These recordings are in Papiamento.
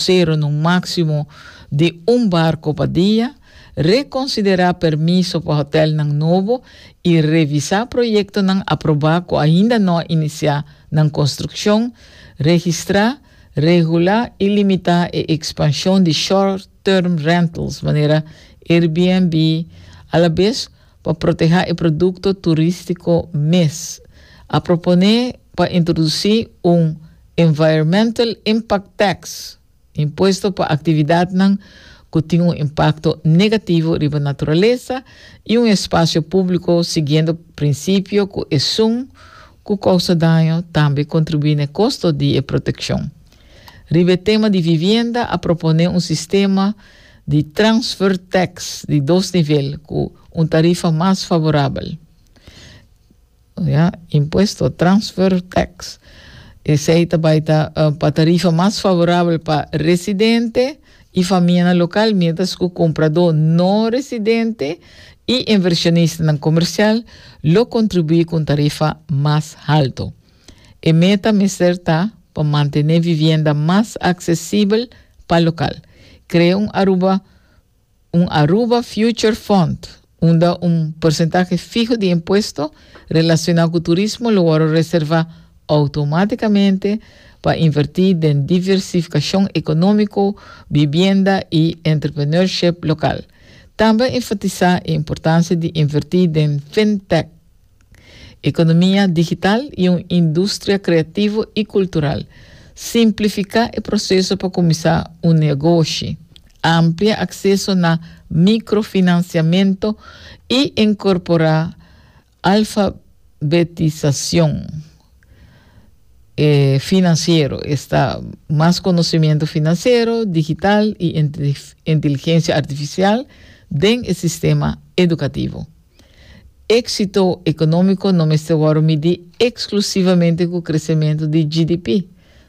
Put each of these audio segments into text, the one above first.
Seron un máksimo di un barko pa dia, rekonsiderá permiso pa hotèlnan nobo i revisá proyektonan aprobá ku ainda no a inisiá nan konstrukshon, registrá, regulá i limitá e ekspanshon di short-term rentals manera Airbnb, alabes pa protehá e produkto turístiko mes, a proponé pa introdusí un Environmental Impact Tax, Impuesto pa Aktividatnan ku tin un impakto negativo riba naturalesa i un espasio públiko siguiendo prinsipio ku esun ku kousa daño tambe kontribuí na e kosto di e protekshon. Riba e tema di vivienda a proponé un sistema di transfer tax di dos nivel ku un tarifa mas favorabel. Ya, impuesto transfer tax. Esei ta bai ta pa tarifa mas favorabel pa residente i famianan lokal miéntras ku kompradó no residente i invershonistanan komersial lo kontribuí ku un tarifa mas haltu. E meta mester ta pa mantené vivienda mas aksesibel pa lokal. Krea un Aruba un Aruba Future Fund unda un porsentahe fiho di impuesto relashoná ku turismo lo wòrdu reservá outomátikamente pa invertí den diversifikashon ekonómiko, bibienda i entrepreneurship lokal. Tambe a enfatisá e importansia di invertí den fintech. Economia digital y un industria creativo y cultural. Simplifica e proceso pa cuminsa un negoshi. Amplia acceso na microfinanciamento y incorpora alfabetisacion financiero, esta mas conocimiento financiero, digital y inteligencia artificial den e sistema educativo. Éksito ekonómiko no mester wòrdu midí eksklusivamente ku kresementu di GDP,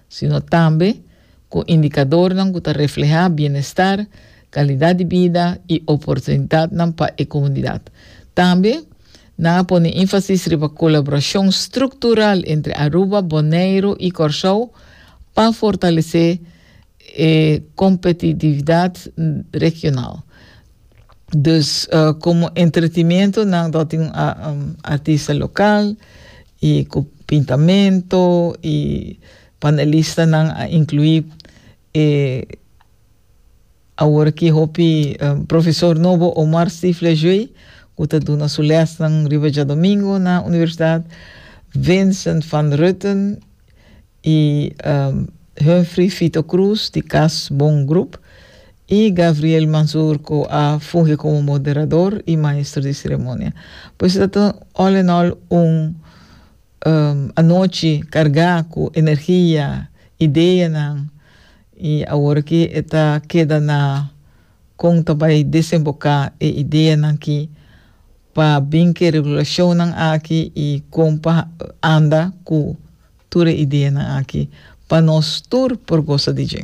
sino tambe ku indikadornan ku ta reflehá bienestar, kalidat di bida i oportunidatnan pa e komunidat. Tambe nan a pone énfasis riba kolaborashon struktural entre Aruba, Boneiru i Kòrsou pa fortalesé e kompetitividat regional. Dus komo entretimentu nan lo tin un artista lokal i ku pintamentu i panelistanan a inkluí e awor aki hopi profesor nobo Omar Steve Lejeune ku ta duna su lèsnan riba djadomingu na universidat, Vincent van Rutten y Humphrey Fito Cruz di Cas Bon Group y Gabriel Mazurco a fungi como moderador y maestro di ceremonia. Pues e ta all in all un anochi carga cu energia, ideanan y awor aki e ta keda na con ta bay desemboca e ideanan aki pa bin cu e regulacionnan aki y con pa anda cu Tur e ideanan aki pa nos tur por gosa di dje.